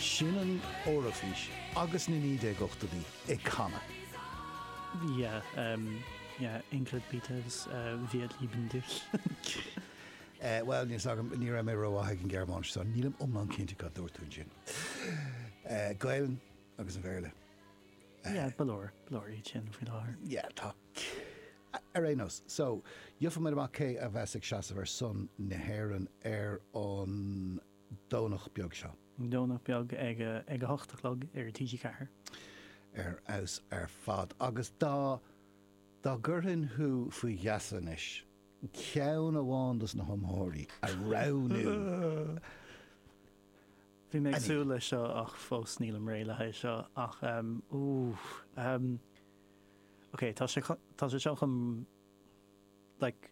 Sin an Eoraifís agus na 1980idí ag canadh. Yeah yeah Ingrid Peters wir lieben dich. Bhuel, níl fhios agam, ní raibh mé ró-mhaith ag an Ghearmáinis so nílim iomlán cinnte cad dúirt tú ansin. Gaelainn agus an Bhéarla. Yeah, ba leor, ba leor iad sin faoi láthair. Yeah, tá. Ar aon nós, so, gheobhaidh muid amach cé a bheas ag seasamh ar son na hÉireann ar an Domhnach beag seo. Domhnach beag ag a ag a hocht a chlog ar TG4. ar fheabhas ar fad agus dá dá gcuirfinn thú faoi gheasa anois, ceann amháin dos na hiomaitheoirí a roghnú. Bhí mé ag súil leis seo ach fós nílim réidh le haghaidh seo ach ehm ooh ehm ok tá sé chun tá sé seo chun like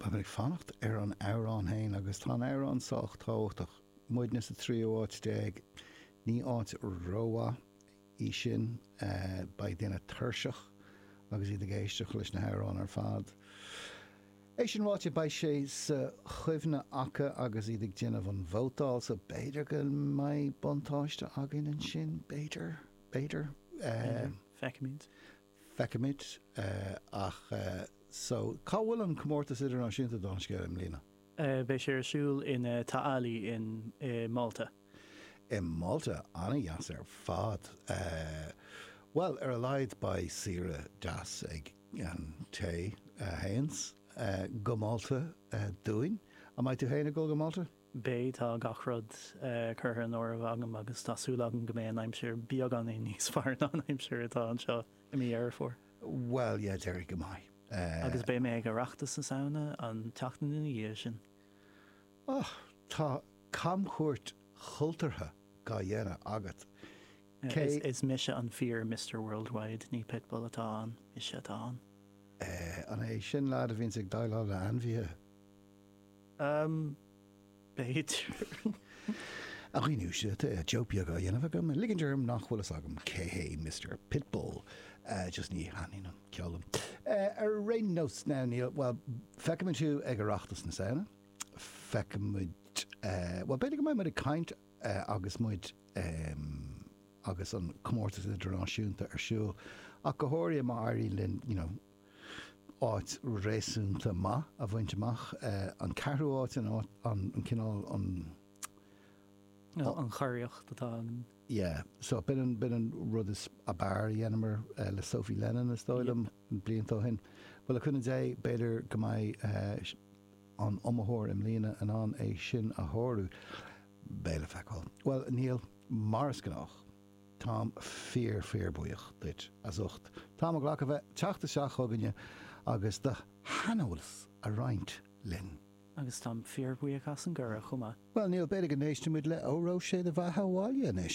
Beidh mé ag fanacht ar an amhrán féin agus tá an amhrán sách tábhachtach. Muidne sa tríú háit déag, ní áit rómhaith í sin. Beidh daoine tuirseach agus iad ag éisteacht leis na hamhráin ar fad. É sin ráite, beidh sé sa chuimhne acu agus iad ag déanamh an vótáil so b'fhéidir go mbeidh buntáiste againn ansin. B'fhéidir. B'fhéidir. B'fhéidir. Feicfimid. feicimid ach so cá bhfuil an comórtas idirnáisiúnta don scléip i mbliana? beidh sé ar siúl in Ta' Qali in i Malta. i Malta? an-dheas ar fad bhuel ar a laghad beidh saoire deas ag an té a théanns go Malta dúinn. an mbeidh tú féin ag dul go Malta? Beidh, tá gach rud curtha in áireamh agam agus tá súil agam go mbeidh an aimsir beagáinín níos fearr ná an aimsir atá anseo i mí Dheireadh Fómhair. Bhuel, yeah, déarfainn go mbeidh. Agus beidh mé ag Oireachtas na Samhna an tseachtain ina dhiaidh sin. Och, tá camchuairt chultúrtha dá dhéanamh agat. Is mise an fíor Mister Worldwide, ní Pitbull atá ann, mise atá ann. An é sin leaid a bhíonns ag déileáil le ainmhithe? Am, b'fhéidir. A dhaoine, tá joke beag á dhéanamh agam, ag ligint orm nach bhfuil fhios agam cé hé Mister Pitbull, just ní thaitníonn an ceol liom. Ar aon nós, now, níl, bhuel, feicfimid thú ag Oireachtas na Samhna, feicfimid, bhuel, b'fhéidir go mbeidh muid ag caint agus muid, em, agus an comórtas idirnáisiúnta ar siúl, ach go háirid má éiríonn linn, you know, áit réasúnta maith a bhaint amach, an ceathrú áit an áit, an cineál, an. nó an churiarracht atá againn. yeah so b'in an b'in an rud is ab fhearr a dheineamar le Sophie Lennon is dóigh liom blianta ó shin bhuel le cúnamh Dé b'fhéidir go mbeidh an iomaitheoir i mbliana in ann é sin a shárú beidh le feiceáil bhuel Niall mar is gnách. Táim fíor fíor buíoch duit as ucht t'am a ghlacadh bheith teacht isteach chugainne agus do shaineolas a roinnt linn. Agus táim fíor bhuíoch as an gcuireadh chomh maith. Bhuel, Niall, b'fhéidir go n-éistfimid le Óró Sé do Bheatha Abhaile anois.